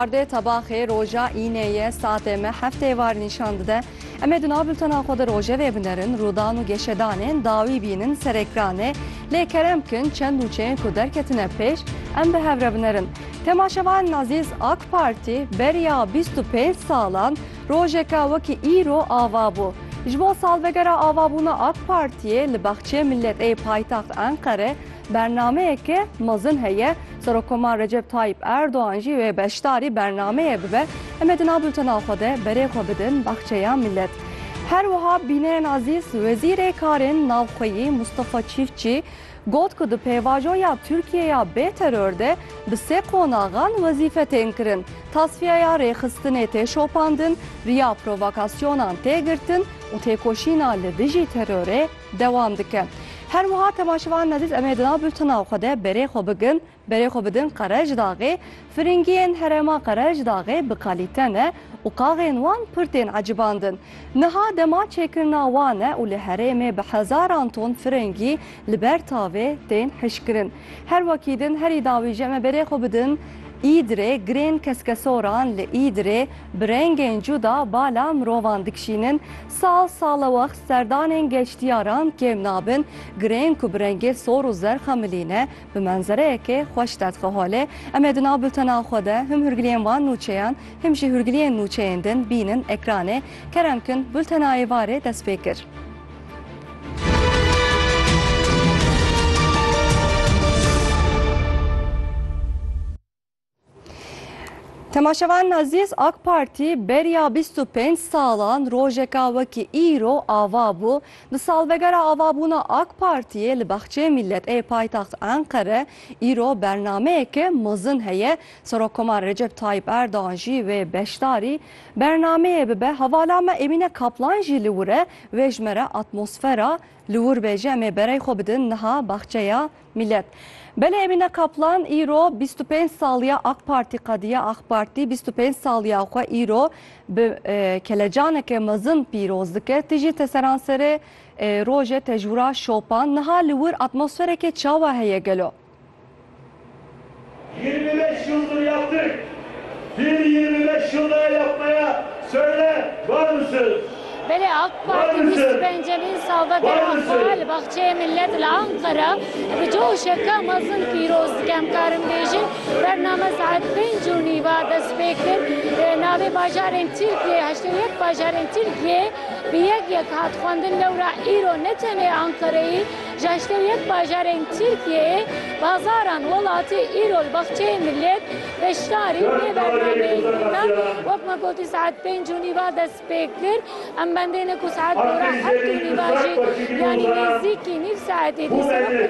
Ardê tebaxê roja înê ye satê me heft êvar nîşan dide. Em ê di nav bultena xwe de rojevê binerin, rûdan û geşedanên dawî bînin serê kranê. Lê kerem bikin çend nûçeyên ku derketine pêş em bi hev re binerin. Temaşevanên ezîz AK Partî beriya bîst û pênc salan rojeke wekî îro ava bû. Ji bo salvegera avabûna AK Partiyê li Baxçeyê Milletê yê paytaxt Enqere, Bernameyeke mezin heye, Serokkomar Recep Tayyîp Erdogan jî wê beşdarî bernameyê bibe. Em ê di nav bultena xwe de berê xwe bidin baxçeya milet. Her wiha bînerên ezîz, Wezîrê Karên Navxweyî Mustafa Çîftçî got ku di pêvajoya Tirkiyeya bê teror de bi sê qonaxan wezîfe tên kirin, tasfîyeya rêxistinê tê şopandin, riya provokasyonan tê girtin û têkoşîna li dijî terorê dewam dike. Her wiha temaşevan nezîz em ê di nav bultena xwe de berê xwe bigin, berê xwe bidin Qerejdaxê, firingiyên herêma Qerejdaxê bi kalîte ne û qaxên wan pir tên ecibandin. Niha dema çêkirina wan e û li herêmê bi hezaran ton firingî li ber tavê tên hişkirin. Her wekî din herî dawî jî em ê berê xwe bidin Îdirê, girên keskesoran li Îdirê bi rengên cuda bala mirovan dikişînin, Sal sal e wext serdanên geştyaran kêm nabin, girên ku bi rengê sor û zerx a milî ne, bi menzereyekê xweş tedxe holê. Em ê di nav bultena xwe de him hûrgiliyên van nûçeyan him jî hûrgiliyên nûçeyên din bînin ekranê. Kerem kin bultena êvarê dest pê kir. Temaşevan Nazîz AK Partî beriya 25 salan rojeka wekî îro ava bû. Di salvegera avabûna AK Partiyê li Baxçeyê Mîllet ê paytaxt Enqere îro bernameyeke mezin heye. Serokkomar Recep Tayyîp Erdogan jî wê beşdarî bernameyê bibe. Hevala me Emîne Kaplan jî li wir e wê ji me re atmosfera li wir bê ji em ê berey xwe bidin niha Baxçeya Mîlet, Belê Emîne Kaplan îro bîst û pênc saliya Ak Partî qediya, Ak Partî bîst û pênc saliya xwe îro bi kelecaneke mezin pîroz dike. Ti jî teseranserê rojê tecwira şopan. Niha li wir atmosfereke çawa heye gelo? Yirmi beş yıldır yaptık. Bir yirmi beş yıl daha yapmaya söyle var mısınız? Belê AK Parti bîst û pencemîn salvegera xwe li Baxçeyê Millet li Anqera bi coşeke mezin pîroz dike. Em karin bêjin bername saet pênc û nîva dest pê kir. Navê bajarên Tirkiyê heştê û yek bajarên Tirkiyê bi yek yek hat xwendin lewra îro ne tenê Anqereyê Ji heştê û yek bajarên Tirkiyeyê bazaran welatî îro li Baxçeyê Millet, beşdarî vê bernameyê dike. Wek me gotî saet pênc û nîva dest pê kir. Em bendê ne ku saet gora heft û nîva jî yanî nêzîkî nîv saetê dîsê wek